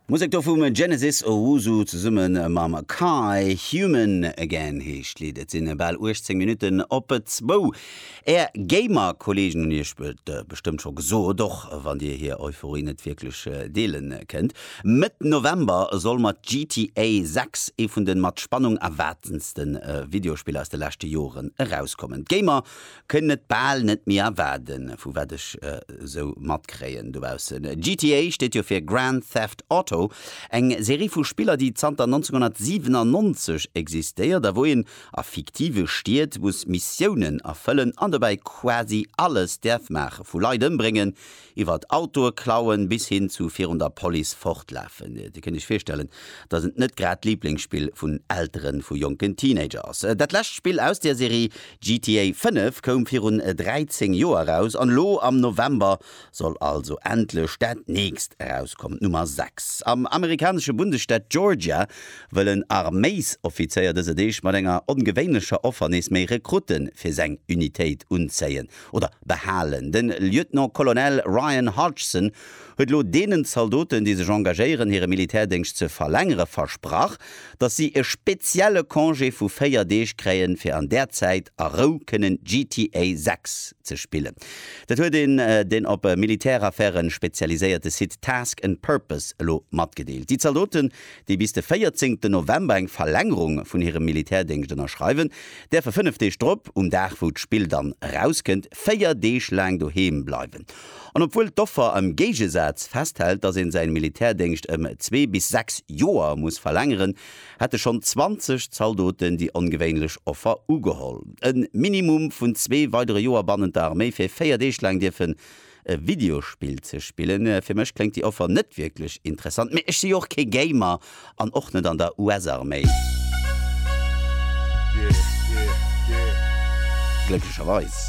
D'Musek do vum Genesis Owusu zesumme mam Kai. Human Again heescht d'Lidd. Et sinn bal 18 Minutten op zwou. Är Gamer-Kollegen hunn iech et bestëmmt scho gesot, och wann dir hir Euphorie net wierklech deele kënnt. Mëtt November soll mat GTA 6 ee vun de mat Spannung erwaartendste Videospiller aus de leschte Joren erauskommen. D'Gamer Kënnen et bal net méi erwaarden, vu wat ech esou matkréien dobaussen. GTA steet jo fir Grand Theft Auto, eng Serie vu Spiller, déi zanter 1997 existéiert a wou een a fiktive Stied muss Missiounen erfëllen an dobäi quasi alles däerf maachen, vu Leit ëmbréngen, Iwwert Autoe klauen bis hin zu virun der Police fortlafen, Dir kënnt Iech virstellen, dass et net grad d'Liblingsspill vun Elteren vu jonken Teenager ass. Dat lescht Spill aus der Serie, GTA 5, koum virun 13 Joer eraus an elo am November soll also endlech dat nächst erauskommen, d'Nummer 6. Am amerikanesche Bundesstaat Georgia wëll en Arméisoffizéier dëser Deeg mat enger ongewéinlecher Offer nees méi Rekrutte fir seng Unitéit unzéien. oder behalen. De Lieutenant-Colonel Ryan Hodgson huet elo deenen Zaldoten, déi sech engagéieren, hire Militärdéngscht ze verlängere versprach, datt si e spezielle Congé vu 4 Deeg kréien, fir an där Zäit a Rou kënnen GTA 6 ze spillen. Dat huet een den op Militäraffäre spezialiséierte Site Task and Purpose elo matgedeelt. Déi Zaldoten, déi bis de 14 ten November eng Verlängerung vun hirem Militärdéngscht ënnerschreiwen, däerfe fënnef Deeg drop, um Dag wou d'Spill dann erauskënnt, véier Deeg laang doheem bleiwen. An obwuel d'Offer am Géigesaz festhält, datt een säin Militärdéngscht ëm zwee bis sechs Joer muss verlängeren, hätte schonn 20 Zaldoten déi ongewéinlech Offer ugeholl, e Minimum vun zwee weidere Joer bannent der Arméi fir véier Deeg laang dierfen e Videospill ze spillen. Fir mech kléngt déi Offer net wierklech interessant, mee ech si jo och kee Gamer an och net an der US-Arméi. Glécklecherweis.